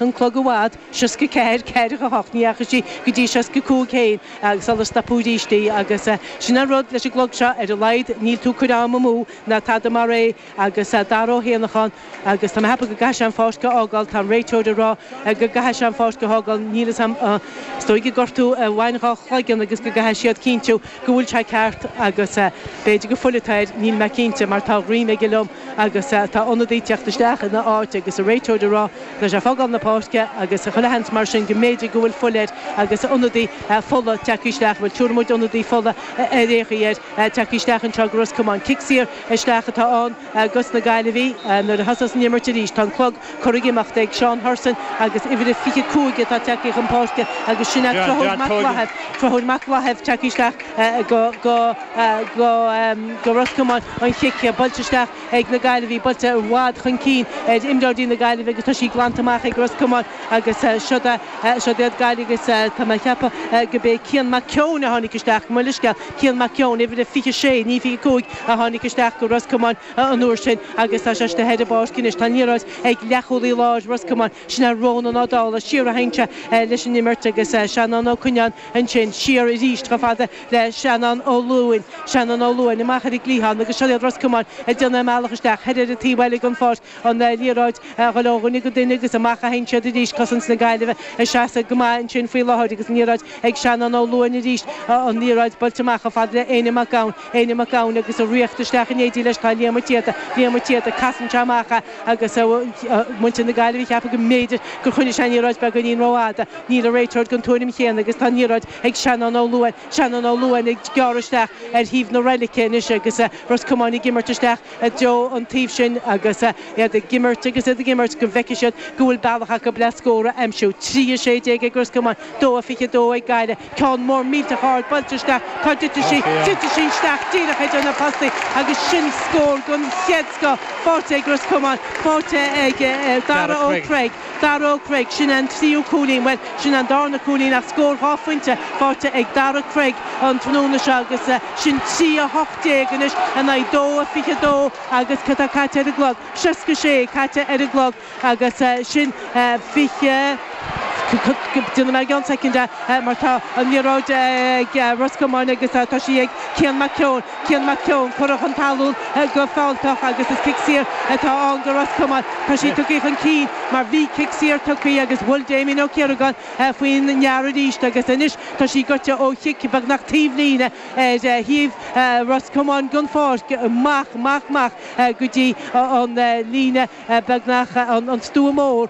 an clog i bhfad, 64, 48, ní fhaca sí go dtí 65 féin agus sular stopadh arís í agus sin an rud leis an gclog seo, ar a laghad níl tú ag cur ama amú ná tada mar é agus Dara Ó hÉanacháin agus tá mé ag ceapadh go gcaithfidh sé an pháirc a fhágáil, tá an réiteoir ag rá go gcaithfidh sé an pháirc a fhágáil, níl fhios a'm, is dóigh ag gortú a bhain dhá chloigeann agus go gcaithfidh siad cinntiú go bhfuil sé ceart agus b'fhéidir go bhfuil fuil air, níl mé cinnte mar tá a ghreim aige liom agus tá ionadaí ag teacht isteach ina áit agus an réiteoir ag rá leis ag fágáil na páirce agus chuile sheans mar sin go mb'fhéidir go bhfuil fuil air agus ionadaí fola tagtha isteach, bhuel dúirt muid ionadaí fola ionadaí eile ar teacht isteach anseo go Ros Comáin. Cic saor isteach atá ann do na Gaillimhigh nuair a thosóidh an imirt arís. Tá an clog curtha ag imeacht ag Seán Hurson agus uimhir a 25 atá tagtha chun páirce agus sin é Conchúr Mac Laithimh, Conchúr Mac Laithimh tagtha isteach go Ros Comáin, an chic buailte isteach. ag na Gaillimhigh, buailte i bhfad chun cinn ar imreoirí na Gaillimhe agus tá sí glanta amach ag Ros Comáin agus siod iad Gaillimh agus tá mé ag ceapadh gurb é Cian Mac Eoin a tháinig isteach, mo leithscéal, Cian Mac Eoin, uimhir a 26, ní 25, a tháinig isteach go Ros Comáin an uair sin agus tá sé istigh ar an bpáirc anois. Tá an liathróid ag leathchúlaí láir Ros Comáin, sin é Rónán Ó Dálaigh, siar a théann sé leis an imirt agus Seanán Ó Cuinneáin ansin, siar arís chomh fada le Seanán Ó Luain, Seanán Ó Luain, amach ar an gcliathán agus siod iad Ros Comáin ag déanamh a mbealach isteach thoir ar an taobh eile den pháirc, an liathróid ag dul ó dhuine go duine agus amach a théann siad arís, cosaint na Gaillimhe ag seasamh go maith ansin faoi láthair agus an liathróid ag Seanán Ó Luain arís, an liathróid buailte amach chomh fada le Éinne Mac Gabhann, Éinne Mac Gabhann agus ag tíocht isteach in éindí leis tá Liam Ó Téada, Liam Ó Téada, casann sé amach é agus muintir na Gaillimhe ag ceapadh go mb'fhéidir gur choinnigh sé an liathróid beagáinín rófhada, níl an réiteoir den tuairim chéanna agus tá an liathróid ag Seanán Ó Luain, Seanán Ó Luain ag gearradh isteach ar thaobh na reilice anois agus Ros Comáin ag imirt isteach i dtreo an taoibh sin agus iad ag imirt agus iad ag imirt go bhfeicfidh siad go bhfuil bealach acu le scór a aimsiú. Trí a sé déag ag Ros Comáin, dó a fiche dó ag Gaillimh. Ceann mór millteach ard buailte isteach, cá dtitfidh sí? Titfidh sí isteach díreach idir na postaí agus sin scór den chéad scoth. Faighte ag Ros Comáin, faighte ag Darragh Ó Creag. Darragh Ó Creag, Sin an tríú cúilín, bhuel, sin an darna cúilín ach scór dhá phointe faighte ag Darragh Craig an tráthnóna seo agus sin trí a hocht déag anois in aghaidh dó a fiche dó agus cad tá caite ar an gclog? Seasca sé caite ar an gclog agus sin fiche, déanfaidh mé i gceann soicind é mar tá an liathróid ag Ros Comáin agus tá sí ag Cian Mac Eoin. Cian Mac Eoin curtha chun talún go fealltach agus is cic saor atá ann do Ros Comáin. Tá sé tugtha chun cinn mar bhí cic saor tugtha agus bhuail Diarmaid Ó Ciaragáin faoin bhfear arís agus anois tá sí gaibhte ó chic beagnach taobh líne ar thaobh Ros Comáin den pháirc amach amach amach go dtí an líne beagnach an stua mór.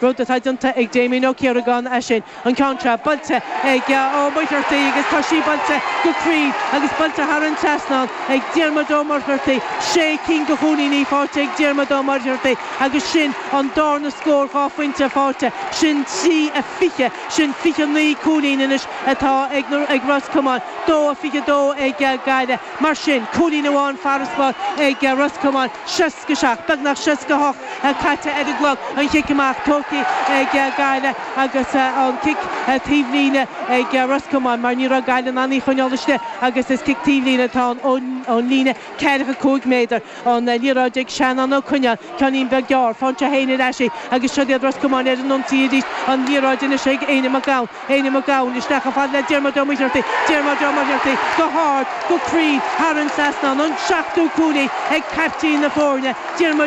rud atá déanta ag Damien Ó Ciaragáin é sin, an ceann seo buailte ag Ó Muircheartaigh agus tá sí buailte go cruinn agus buailte thar an trasnán ag Diarmuid Ó Muircheartaigh, sé cinn de chúilíní faighte ag Diarmuid Ó Muircheartaigh agus sin an darna scór dhá phointe faighte, sin trí a fiche, sin fiche naoi cúilín anois atá ag na, ag Ros Comáin, dó a fiche dó ag Gaillimh, mar sin cúilín amháin farasbarr ag Ros Comáin, sé. 67, beagnach 68 caite ar an gclog, an chic amach tógtha ag Gaillimh agus an cic taobhlíne ag Ros Comáin mar ní raibh Gaillimh in ann í a choinneáil istigh agus is cic taobhlíne atá ann ón líne ceathracha cúig méadar, an liathróid ag Seanán Ó Coinneáin, ceannín beag gearr, faigheann sé féin ar ais í agus siod iad Ros Comáin ar an ionsaí arís, an liathróid anois ag Éinne Mac Gabhann. Éinne Mac Gabhann, isteach chomh fada le Diarmuid Ó Muircheartaigh, Diarmuid Ó Muircheartaigh go hard, go cruinn, thar an trasnán, an seachtú cúilín ag caiptín na foirne, Diarmuid.